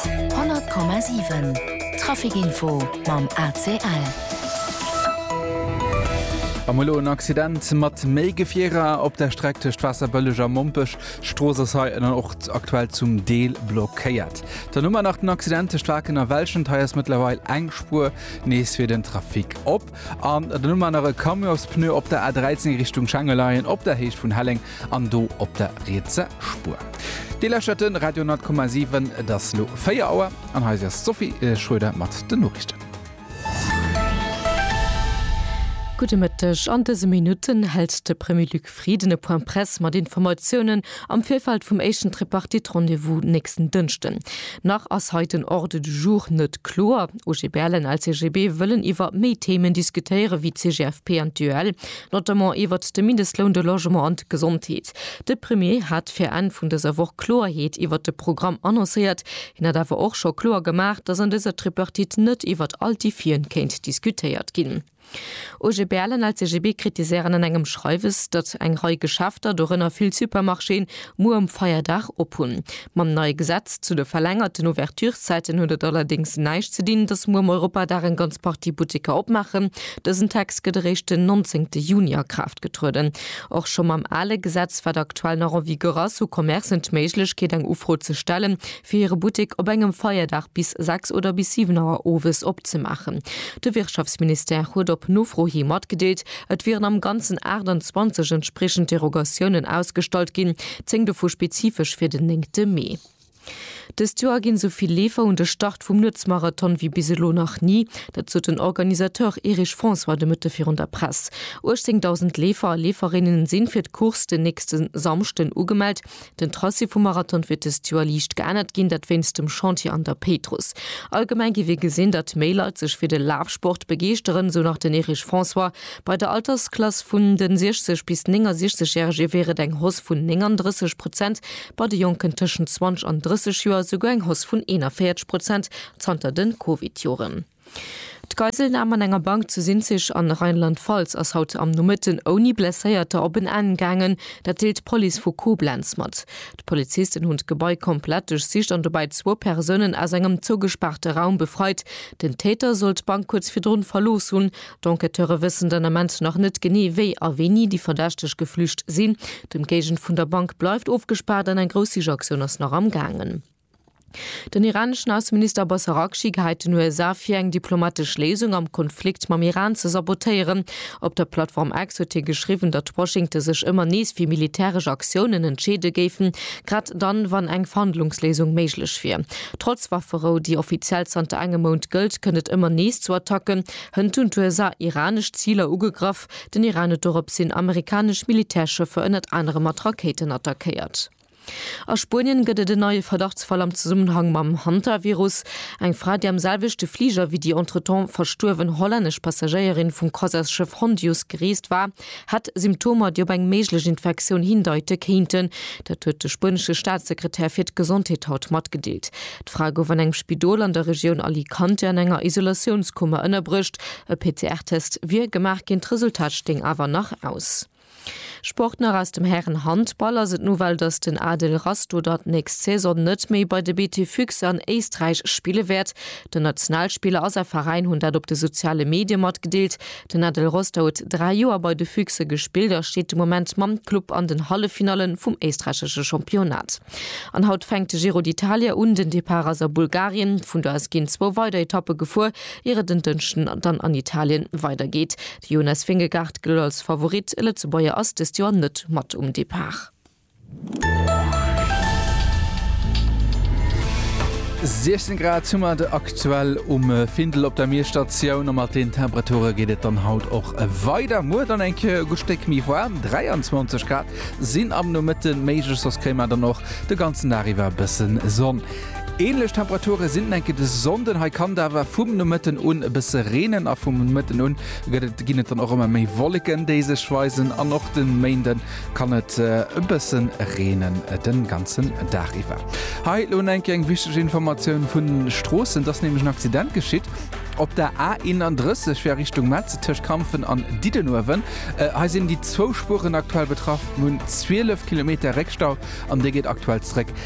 100,7 Traficinfo mam ACL. Am elo en Accident mat méi Gefierer op der Streck tëscht Waasserbëlleg a Mompech. D'Strooss ass hei ënneroort aktuell zum Deel blockéiert. Dann hu mer nach den Accident tëscht Waken a Welschent. Hei ass mëttlerweil eng Spuer nees fir den Trafic op. An dann hu mer nach e Camionsspneu op der A13 Richtung Schengelaien op der Héicht vun Helleng. An do op der rietse Spuer. Dir lauschtert de Radio 10,7. Et ass elo 4 Auer an hei si ass d'Sophie Schroeder mat den Noriichten. Gudde Mëtteg, An dëse Minutten hält de Premier Luc Frieden e Point Presse mat Informatiounen am Virfeld vum éischten Tripartite-Rendez-vous nächsten Dënschden. Nach ass hei den Ordre du jour net kloer. OGBL an LCGB wëllen iwwer méi Themen diskutéieren, wéi d'CGFP an d'UEL. notamment iwwert de Mindestloun, de Logement an d'Gesondheet. De Premier hat fir Enn vun dëser Woch Kloerheet iwwert de Programm annoncéiert. Hien hat awer och scho kloer gemaach, datt an dëser Tripartite net iwwert all d'Defien kéint diskutéiert ginn. OGBL an LCGB kritiséieren an engem Schreiwes, datt eng Rei Geschäfter, dorënner vill Supermarchéen, Muer um Feierdag ophunn. Mam neie Gesetz zu de verlängerten Ouverturszäiten huet et allerdéngs näischt ze dinn, datt muer um Europadag eng ganz Partie Butteker opmaachen. Dësen Text gëtt eréischt den 19 Juni a Kraaft getrueden. Och scho mam ale Gesetz, wat aktuell nach en vigueur ass, hu Commercen d'Méiglechkeet, eng Ufro ze stellen, fir hire Buttek op engem Feierdag bis 6 oder bis 7 Auer owes opzemaachen. De Wirtschaftsministère huet op Nofro hi matgedeelt, et wieren am Ganzen 28 entspriechend Derogatiounen ausgestallt ginn, 10 dovu spezifesch fir den 9 Mee. Dëst Joer ginn esou vill Leefer un de Start vum Nuetsmarathon wéi bis elo nach ni. Dat sot den Organisateur Erich François de Mëtte virun der Press. 18.000 Leefer a Leeferinnen si fir d'Course den nächste Samschden ugemellt. Den Tracé vum Marathon wier dëst Joer liicht geännert ginn, dat wéinst dem Chantier an der Péitruss. Allgemeng géif ee gesinn, datt méi Leit sech fir de Lafsport begeeschteren, esou nach den Erich François. Bei der Altersklass vun de 60 bis 69 Järege wier et eng Hausse vun 39 Prozent, bei de Jonken tëschent 20 an 30 Joer esouguer eng Hausse vun 41 Prozent zanter de Covid-Joren. D'Geiselnam an enger Bank zu Sinzig an Rheinland-Pfalz ass haut am Nomëtten ouni Blesséierter op en Enn gaangen. Dat deelt d'Police vu Koblenz mat. D'Polizisten hunn d'Gebai komplett duerchsicht an dobäi zwou Persounen aus engem zougespaarte Raum befreit. Den Täter soll d'Bank kuerz virdrun verlooss hunn. D'Enquêteure wëssen den Ament nach net genee, wéi a wéini déi Verdächteg geflücht sinn. D'Ëmgéigend vun der Bank bleift ofgespaart an eng grouss Sichaktioun ass nach am gaangen. Den iraneschen Ausseminister Abbas Araghchi geheit den USA vir, eng diplomatesch Léisung am Konflikt mam Iran ze sabotéieren. Op der Plattform X huet hie geschriwwen, datt Washington sech ëmmer nees fir militäresch Aktiounen entscheede géifen, grad dann, wann eng Verhandlungsléisung méiglech wier. Trotz Wafferou, déi offiziell zanter engem Mount gëllt, kënnt et ëmmer nees zu Attacken. Hënt hunn d'USA iranesch Ziler ugegraff. Den Iran huet doropshin amerikanesch Militärschëffer ënnert anerem mat Rakéiten attackéiert. A Spuenien gëtt et en neie Verdachtsfall am Zesummenhang mam Hantavirus. Eng Fra, déi am selwechte Fliger wéi déi entretemps verstuerwen hollännesch Passagéierin vum Croisièresschëff Hondius gereest war, hätt Symptomer, déi op eng méiglech Infektioun hindeite kéinten. Dat huet de spuenesche Staatssekretär fir d'Gesondheet haut matgedeelt. D'Fra gouf an engem Spidol an der Regioun Alicante an enger Isolatiounskummer ënnerbruecht. E PCR-Test wier gemaach ginn, d'Resultat stéing awer nach aus. Sport nach aus dem Hären-Handball ass et d'Nouvelle, dass den Adel Rastoder d'nächst Saison net méi bei de BT Füchse an Éisträich spille wäert. Den Nationalspiller a säi Veräin hunn dat op de soziale Medie matgedeelt. Den Adel Roster huet dräi Joer bei de Füchse gespillt a steet de Moment mam Club an den Halleffinale vum éisträichesche Championnat. An haut fänkt de Giro d'Italia un. Den Depart ass a Bulgarien. Vun do aus ginn zwou weider Etappe gefuer, ier et en Dënschden dann an Italien weidergeet. Jonas Vingegaard gëllt als Favorit, e Lëtzebuerger ass dëst Joer net mat um Depart. Siechzéng Grad hu mer et aktuell um Findel op der Mierstatioun a mat den Temperature geet et dann haut och weider. Muer dann eng Kéier e gutt Stéck méi waarm, 23 Grad sinn am Nomëtte méiglech, soss kréie mer dann och de ganzen Dag iwwer e bësse Sonn. Ähnlech Temperature sinn et enke de Sonnden. Hei kann et awer vum Nomëtten un e bësse reenen a vum Mëtten un gëtt et, ginn et dann och ëmmer méi Wolleken, déi sech weisen an och de Méinden kann et e bësse reenen den ganzen Dag iwwer. Hei lo enke eng wichteg Informatioun vun den Stroossen, et ass nämlech en Accident geschitt op der A 31 fir a Richtung Metz tëscht Kampfen an Diddenuewen. Hei sinn déi zwou Spueren aktuell betraff, mir hunn 12 Kilometer Réckstau an dee geet aktuell zréck.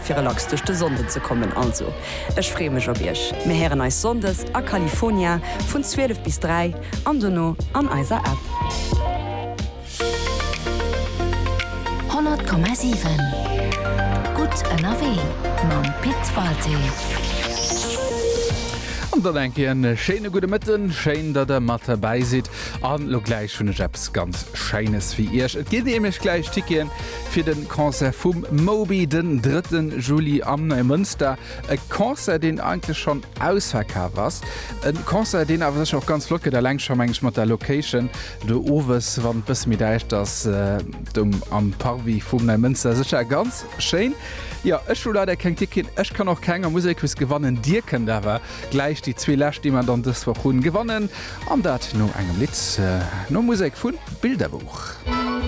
fir relax duerch de Sonnden ze kommen. Also ech freeë mech op iech. Mir héieren eis Sonndes a California vun 12 bis 3 an dono an eiser App. 100,7 Gutt ënnerwee mam Pit Walté. An dann eng Kéier en schéine gudde Mëtten. Schéin, datt der mat derbäi sidd. An elo gläich hunn ech eppes ganz Scheines fir iech. Et ginn nämlech gläich Ticketen fir de Concert vum Moby den 3 Juli am Neimënster. E Concert, deen eigentlech schonn ausverkaf ass. E Concert, deen awer sech och ganz flott gëtt, eleng scho meng ech mat der Location do owes, wann et bësse méi däischt ass, do am Parvis vum Neimënster. Sécher ganz schéin. Jo, ech hu leider keng Ticketen, ech kann och keng am Musekus gewannen. Dir kënnt awer gläich déi zwee lescht, déi mer dann dës Woch hunn, gewannen. An dat no engem Lidd, nom Musek vu Bilderbuch.